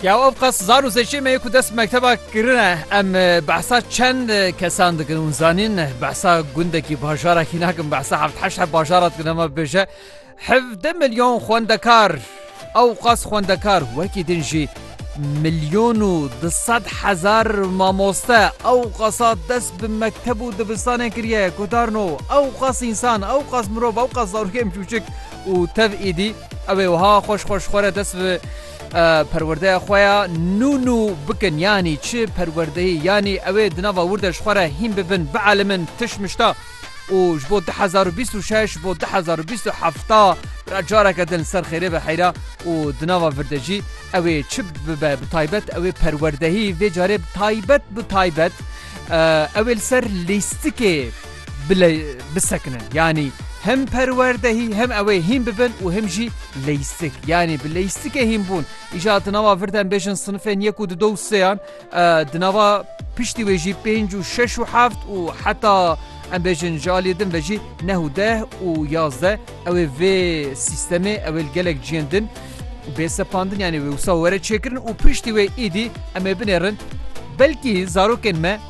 Ya ev qas zar û zeçê me ku dest mekteba kirine em behsa çend kesan dikin û zanîn behsa gundekî bajarekî nakin behsa heft heşt he bajara dikin ema bêje hevde milyon xwendekar ew qas xwendekar wekî din jî milyon û di sed hezar mamoste ew qasa dest bi mekteb û dibistanê kiriye gudarno ew qas însan ew qas mirov ew qas zarokên çûçik û tev êdî ew ê wiha xweş xweş xwe re dest bi perwerdeya xwe ya nû nû bikin yanî çi perwerdeyî yanî ew ê di nava wir de ji xwe re hîn bibin, bielimin tiş mişta û ji bo du hezar û bîst û şeş ji bo du hezar û bîst û heft ra careke din li ser xêrê be heyra û di nava vir de jî ew ê çi bibe bi taybet ew ê perwerdehî vê carê bi taybet bi taybet ew ê li ser lîstikê bile bisekinin yanî hem perwerdehî hem ew ê hîn bibin û him jî leystik yanî bi leystikê hînbûn îja di nava vir dem bêjin sinifên yek û di do seyan di nava piştî wê jî pênc û şeş û heft û heta em bêjin ji aliyê din ve jî neh û deh û yazde ew ê vê sîstemê ew ê gelek ciyên din bê sepandin yanî wê wisa were çêkirin û piştî wê îdî em ê binêrin belkî zarokên me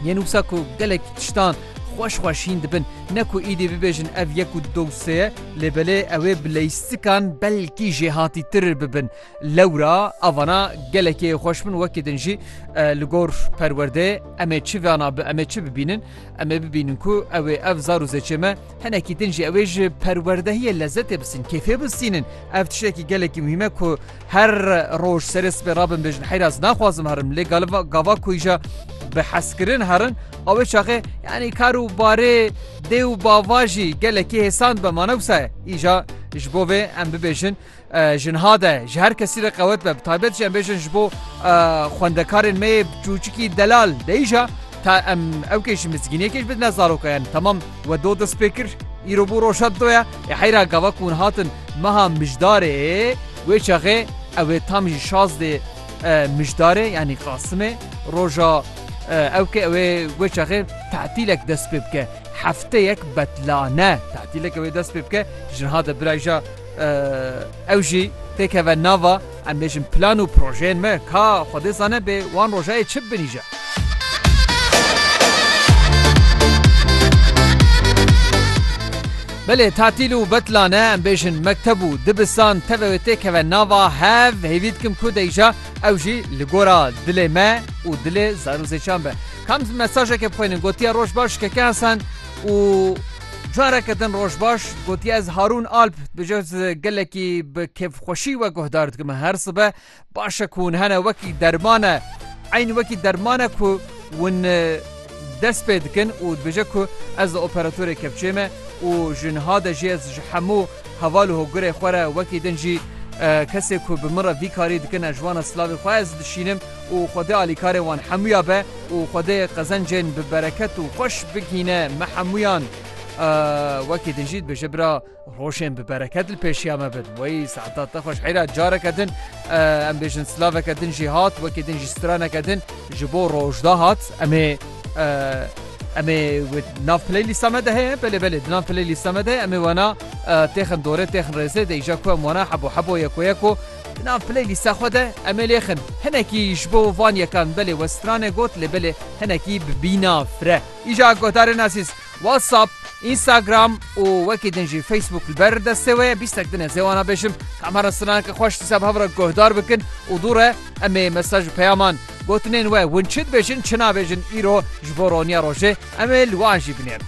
Yên wisa ku gelek tiştan xweş xwe şîn dibin, ne ku îdî bibêjin ev yek û du sê ye, lê belê ew ê bi leystikan belkî jêhatîtir bibin. Lewra avana gelekê xweş bin wekî din jî li gor perwerdeyê em ê çi vana bi em ê çi bibînin? Em ê bibînin ku ew ê ev zar û zêçê me, Hinekî din jî ew ê ji perwerdehiyê lezetê bisînin, kêfê bisînin. Ev tiştekî gelekî muhîm e ku her roj serê sibê rabin bêjin heyr ez naxwazim herim lê galiba gava ku îja bi hezkirin herin a wê çaxê yanî kar û barê dê û bava jî gelekî hêsand be ma ne wisa ye îja ji bo vê em bibêjin Jinha de ji her kesî re qewet be, bi taybet jî em bêjin ji bo xwendekarên me yê çûçikî delal de îja ta em ew kê ji mizgîniyekê jî bidine zarokayan. Temam we do dest pê kir. Îro bû roja do ye. Ê heyra gava ku hûn hatin meha mijdarê wê çaxê ew ê tam jî şazdê mijdarê yanî qasimê roja ew kê ew ê wê çaxê tetîlek dest pê bike. Hefteyek betlane tetîleke wê dest pê bike jinha de birayja Ew jî têkeve nava em bêjin plan û projeyên me ka Xwedê zane bê wan rojayê çi binîje. Belê tatîl û betlane em bêjin mekteb û dibistan teve wê têkeve nava hev hêvî dikim ku deyja ew jî li gora dilê me û dilê zarûzêçan be. Kam mesajeke bixwînin gotiye roj baş keke Hesen û Careke din roj baş gotiye ez Harûn Alp bi cez gelekî bi kêfxweşî we guhdar dikim her sibe başe ku hûn hene wekî derman e eyn wekî derman e ku hûn dest pê dikin û dibêje ku ez li operatorê kepçê me û ji niha de jî ez ji hemû heval û hogurê xwe re wekî din jî kesê ku bi min re vî karî dikin e ji wan e silavê xwe ez dişînim û Xwedê alîkarê wan hemûya be û Xwedê qezencên bi bereket û xweş bigihîne me hemûyan. Ahh wekî din jî dibêje bira rojên bi bereket li pêşiya me bin. Wey saeta te xweş heyra careke din em bêjin silaveke din jî hat wekî din jî straneke din ji bo rojda hat em ê em ê nav playlîsta me de heye belê belê di nav playlîsta me de heye em ê wena têxin dorê têxin rêzê de îja ku em wena hebo hebo yeko yeko Di nav playlîsta xwe de em ê lêxin. Hinekî ji bo van yekan belê we stranê got lê belê hinekî bi bîna fre. Îja guhdarên ezîz, WhatsApp, Instagram û wekî din jî Facebook li ber destê we ye. Bîstek din ez ê wana bêjim ka em here straneke xweş dîsa bi hev re guhdar bikin û dû re em ê mesaj û peyaman, gotinên we hûn çi dibêjin çi nabêjin îro ji bo roniya rojê em ê li wan jî binêrin.